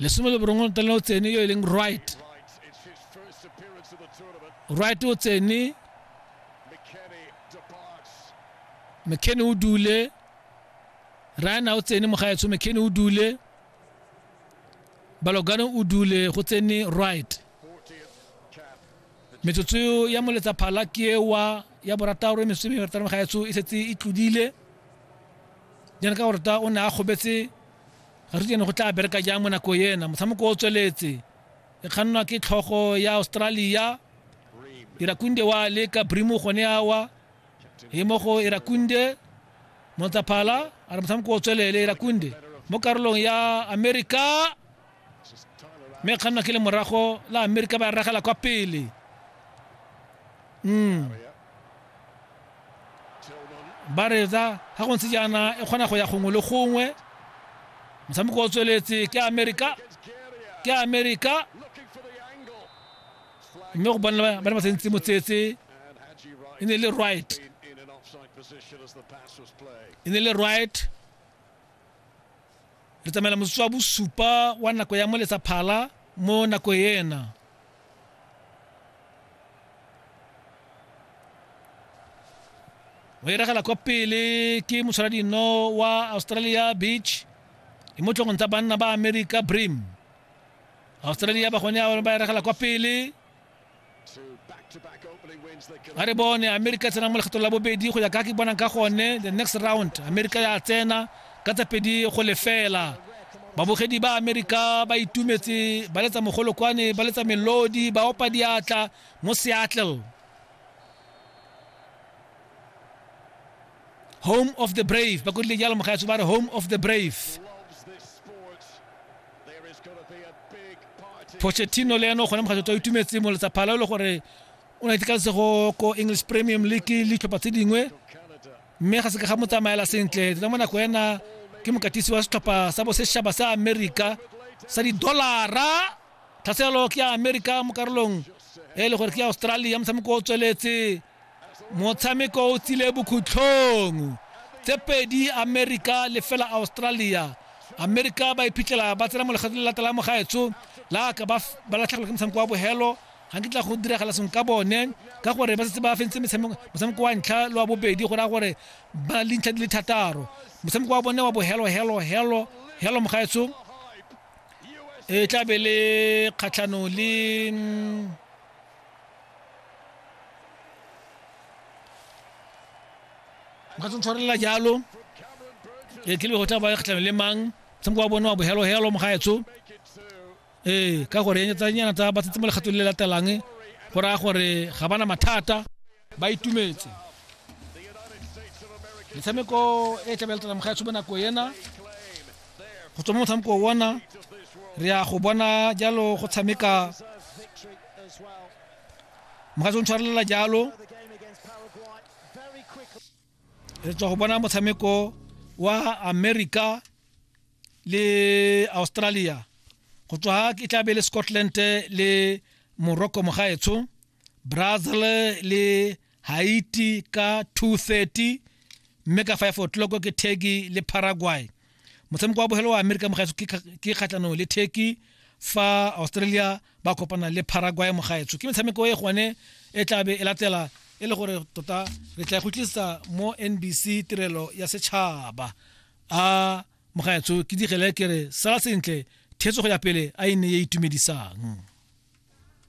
lesome le borongwe ntlana o tsene yo e leng right right o tsene mckenny o dule rana o tsene mogaetsho mckenny o dule balogano o dule go tsene right metsotso ya moletsa phala ke ewa ya borataro e mesome e barataro mogaetsho e setse e tlodile jaana ka goreta o ne a kgobetse Ga re tsene go tla bereka jang mo nako ena. Motshameko o tsweletse. E kgannwa ke tlhogo ya Australia. Irakunde wa leka Brimu gone awa. E mo go Irakunde. Montsaphala a re motshameko o tswelele Irakunde. Mo karolong ya America mme e kgannwa ke le morago la amerika ba ragela kwa pele mm. ba retsa ga go ntse jaana e kgona go ya gongwe le gongwe motshameko o tsweletse ke amerika ke amerika mme go bona ba ne ba tsentse motsetse e ne le right e ne le right Re tsamaela motsotso wa bosupa wa nako ya moletsa phala mo nako ena. o iragela kwa pele ke motshwaradino wa australia beach e mo tlhogong tsa banna ba america brim australia ba gone ba iragela kwa pele a re bone amerika e tsena mo lekgetho la bobedi go ya ka ke bonang ka gone the next round amerika ya tsena ka tsa pedi go lefela babogedi ba amerika ba itumetse ba letsa mogolokwane ba letsa melodi ba opa diatla mo seattle home of the brave ba kodile jalo mogaetso ba re home of the brave pochettino le ene o gone mokgatlho to itumetse mo letsa phala e le gore o na itekalesego ko english premium league le ditlhopha tse dingwe mme ga se ka ga mo tsamaela sentle tla mo nako ena ke mokatisi wa setlhopha sa bosetšhaba sa america sa didolara tlhaselo ke ya america mo karolong e le gore ke ya australia motshameko o tsweletse motshameko o tsile bokhutlhong tse pedi america le fela australia america ba iphitlhela ba tsena mo lekgetlo le latela mo gaetsho la ka ba latlhegelwa ke motshameko wa bogelo ga ke tla go diragala seng ka bone ka gore ba setse ba fentse motshameko wa ntlha le wa bobedi go raya gore ba na le dintlha di le thataro motshameko wa bone wa bohelo helo helo helo mogaetsho e tlabe le kgatlhanong le mm, nka tse ntshwarelela jalo e tlile go tla ba kgatlhanong le mang tshameko wa bone wa bohelohelo mogaetso ee ka gore tsa nyana tsa ba tsetse mo legatong le latelang go raya gore ga bana mathata ba itumetse metshameko e tlabe letla moga tsho bonako ena go tswa mo motshameko ona re ya go bona jalo go tshameka moga tsho ntshwarelela jalo re tswa go bona motshameko wa america le australia go tswa ke tlabe le scotland le morocco mogaetsho brazil le haiti ka 230 mme ka 5 o'clock ke turkey le paraguay motshameko wa bogelo wa amerika mogaetso ke kga- ke kgatlhanong le turkey fa australia ba kopana le paraguay mogaetso ke metshameko e gone e tlabe e latela e le gore tota re tla e go tlisa mo nbc tirelo ya setšhaba a mogaetso ke digele ke re sala sentle theetso go ya pele a e ne e itumedisang